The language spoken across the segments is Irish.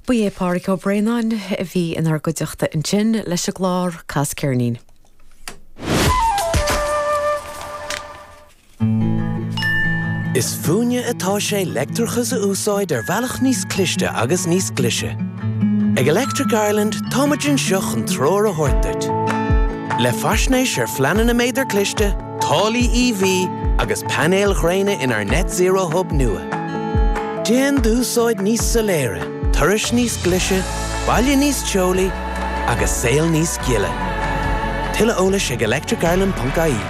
Ba é Pádraig Ó Braonáin a bhí inár gcuideachta ansin leis an gclár Cas Ceirnín. Is fúinne atá sé leictreachas a úsáid ar bhealach níos cliste agus níos glaise. Ag Electric Ireland táimid anseo chun treoir a thabhairt duit. Le faisnéis ar phleananna méadar cliste, Táillí EV agus painéil ghréine inár Net Zero Hub nua. Déan d'úsáid níos soiléire, turais níos glaise, baile níos teolaí agus saol níos gile. Tuilleadh eolais ag electricireland.ie.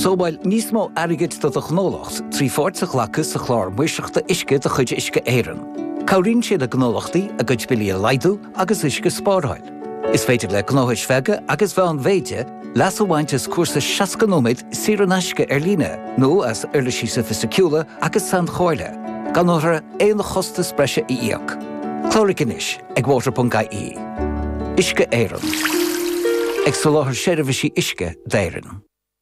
Sábháil níos mó airgid do do ghnólacht trí pháirt a ghlacadh sa Chlár Maoirseachta Uisce de chuid Uisce Éireann. Cabhraíonn sé le gnólachtaí a gcuid billí a laghdú agus uisce a spáráil. Is féidir le gnóthais bheaga agus mheánmhéide leas a bhaint as cúrsa 60 nóiméad saor in aisce ar líne nó as uirlisí soifisticiúla agus sainchomhairle, gan orthu aon chostas breise a íoc. Cláraigh anois ag water.ie. Uisce Éireann. Ag soláthar seirbhísí uisce d'Éirinn.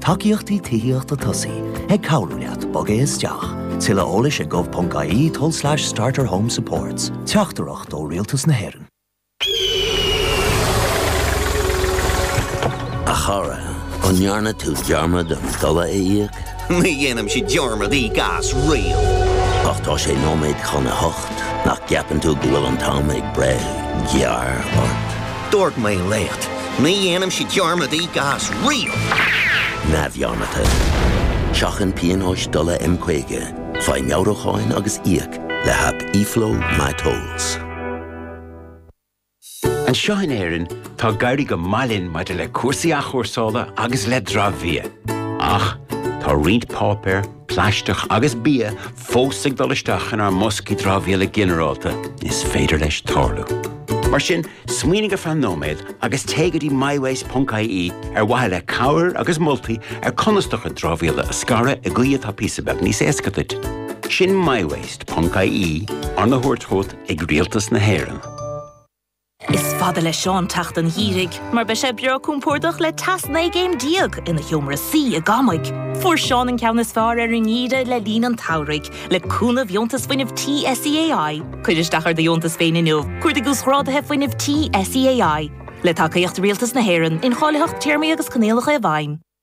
Tacaíochtaí Tithíochta Tosaigh ag cabhrú leat bogadh isteach. Tuilleadh eolais ag gov.ie tulslais starterhomesupports. Teachtaireacht ó Rialtas na hÉireann. A chara, an ndearna tú dearmad an dola a íoc? Ní dhéanaimse dearmad íoc as riamh. Ach tá sé nóiméad chun a hocht. Nach gceapann tú go bhfuil an t-am ag breith gearr ort? Dúirt mé leat, ní dhéanaimse dearmad íoc as riamh! neamhdhearmadta. Seachain pionóis dola M50, faigh meabhrúcháin agus íoc le haip eFlow My Tolls. Anseo in Éirinn, tá ag éirí go maith linn maidir le cúrsaí athchúrsála agus le dramhbhia. Ach, tá roinnt páipéar, plaisteach agus bia fós ag dul isteach inár mboscaí dramhaíola ginearálta, is féidir leis tarlú. Mar sin, smaoinigh ar feadh nóiméad agus téigh go dtí mywaste.ie ar mhaithe le cabhair agus moltaí ar conas do chuid dramhaíola a scaradh i gcaoi atá píosa beag níos éasca duit. Sin mywaste.ie, arna thabhairt chugat ag Rialtas na hÉireann. Is fada le Seán teacht an gheimhridh mar beidh sé breá compordach le teas 19 gcéim ina sheomra suí i gCamaigh. Fuair Seán an ceann is fearr ar an ngeimhreadh le linn an tsamhraidh le cúnamh Dheontas Fuinnimh Tí SEAI. Cuir isteach ar do dheontas féin inniu, cuardaigh Uasghráduithe Fuinnimh Tí SEAI. Le tacaíocht Rialtas na hÉireann, incháilitheacht, téarmaí agus coinníollacha i bhfeidhm.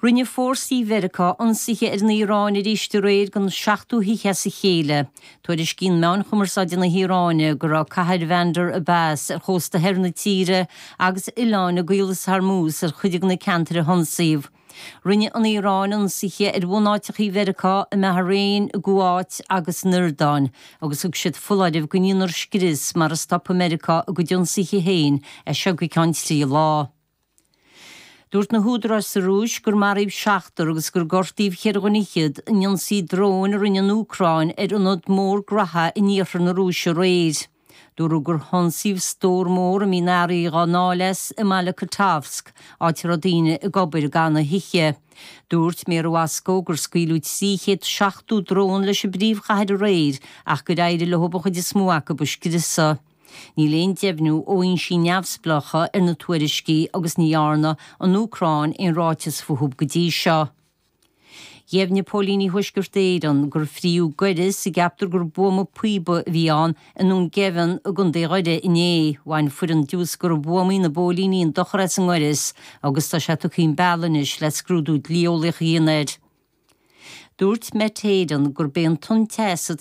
Rinne fórsaí Mheiriceá ionsaithe ar an Iaráin arís aréir don seachtú hoíche as a chéile. Tuairiscíonn meáin chumarsáide na hIaráine go raibh cathair Bhandar Abbas ar chósta theas na tíre agus oileáin i gCaolas Hormuz ar chuid de na ceantair a hionsaíodh. Rinne an Iaráin ionsaithe ar bhunáiteachaí Mheiriceá i mBahrain, i gCuáit agus san Iordáin agus thug siad foláireamh go ndéanfar scrios mara stopfaidh Meiriceá a gcuid ionsaithe féin as seo go ceann trí lá. Dúirt na húdaráis sa Rúis gur maraíodh seachtar agus gur gortaíodh ceithre dhuine fhichead in ionsaí dróin a rinne an Úcráin ar ionad mór grabtha in iarthar na Rúise aréir. Dúradh gur hionsaíodh stór mór a mbíonn earraí dhá ndáileadh as i mbaile Kottovsk, áit a raibh daoine ag obair go deireanach san oíche. Dúirt méara Mhoscó gur scaoileadh 370 drón leis an bpríomhchathair aréir ach gur éirigh leo an chuid is mó acu a scriosadh. Níl aon deimhniú ó fhoinsí neamhspleácha ar na tuairiscí agus ní dhearna an Úcráin aon ráiteas fúthu go dtí seo. Dheimhnigh Póilíní Thuaisceart Éireann gur fríodh goireas a gceaptar gur buama píopa a bhí ann i nDún Geimhin i gContae Dhoire inné. Bhain foireann diúscartha buamaí na bpóilíní an dochar as an ngoireas agus tá sé tugtha chun bealaigh anois le scrúdú dlíeolaíoch a dhéanamh air. Dúirt Met Éireann gurb é an tonn teas atá